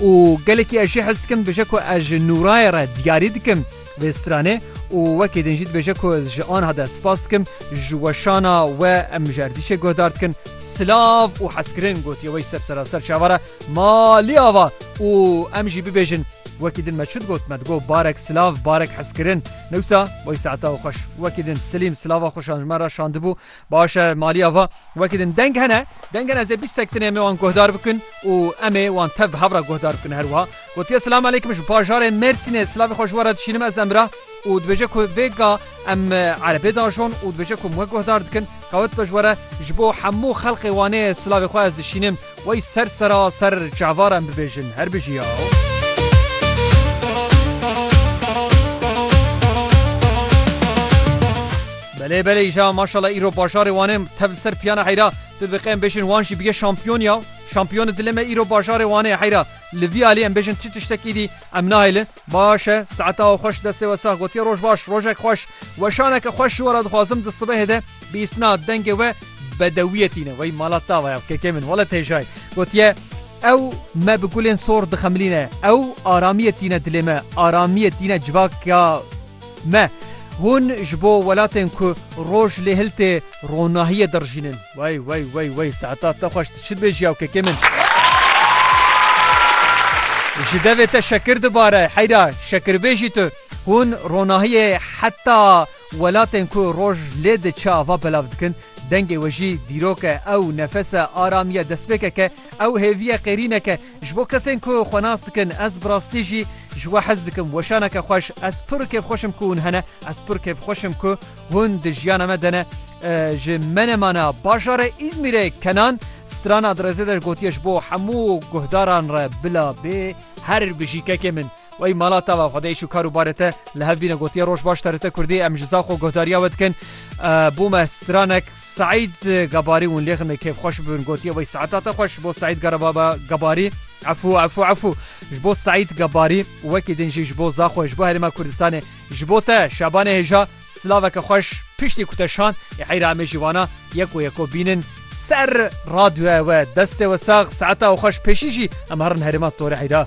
û gelekî ez jî hez dikim dibêje ku ez ji Nûrayê re diyarî dikim vê stranê û wekî din jî dibêje ku ez ji anha de spas dikim ji weşana we em ji erdîşê guhdar dikin silav û hezkirin gotiye wê ji ser seraser çava re ma lî ava û em jî bibêjin wekî din me çi digot me digot barek silav barek hezkirin newsa wey saeta xweş wekî din silîm silava xweşan ji me re şandibû Baş e maliya va wekî din deng hene deng hene ez ê bîst sektinê em ê wan guhdar bikin û em ê wan tev bi hev re guhdar bikin her wiha gotiye silam aleykum ji bajarê Mêrsînê silavê xwe ji we re dişînim ez Emrah û dibêje ku vê ga em erebê dajon û dibêje ku em we guhdar dikin qewet be ji we re ji bo hemû xelqê Wanê silavê xwe ez dişînim. Wey ser sera ser çavara em bibêjin her bijî ya. Belê belê îja maşala îro bajarê Wanê tev li ser piyana heyra tu dibêqê em bêjin wan jî bige şampiyon ya şampiyoni dile me îro bajarê Wanê heyra li vî alî em bêjin çi tiştekî dî em nahêlin Baş e, saeta û xweş destê we sax gotiye roj baş, rojek xweş, weşaneke xweş ji we re dixwazim di sibehê de bîsna dengê we bedewiyê tîne wey mala tava ya kekê min wele têjay gotiye ew me bi gulên sor dixemilîne ew aramiyê tîne dilê me aramiyê tîne civak ya Me, hûn ji bo welatên ku roj lê hil tê ronahiyê dirijînin. Wey wey wey wey Seetat te xweş tu çi dibêjî ya kekê min. Ji devê te şekir dibare heyra şekirbêjî tu. Hûn ronahiyê heta welatên ku roj lê diçe ava belav dikin. Dengê we jî dîrok e, ew nefes e, aramiye, destpêkek e, ew hêviye qêrînek e. Ji bo kesên ku xwe nas dikin, ez bi rastî jî ji we hez dikim. Weşaneke xweş. Ez pir kêfxweş im ku hûn hene. Ez pir kêfxweş im ku hûn di jiyana me de ne. Ji Menemana, bajarê Îzmîrê Kenan strana di rêzê de gotiye ji bo hemû guhdaran re bila bê her bijî kekê min. Wey mala tava xwe de îş û kar û barê te li hev bîne gotiye roj baş terite kurdî em ji za xwe guhdariya we dikin bû me stranek Seîd Gebarî hûn lêxin me kêfxweş bibin gotiye wey saeta te xweş bo Seîd Garababa Gebarî efû efû efû ji bo Seîd Gebarî wekî din jî ji bo za xwe ji bo herêma Kurdistanê ji bo te Şabanê hêja silaveke xweş piştî ku te şand ê heyra em ê jî wana yeko yeko bînin ser radyoya we destê we sax saeta we xweş pêşî jî em herin herêma torê heyra.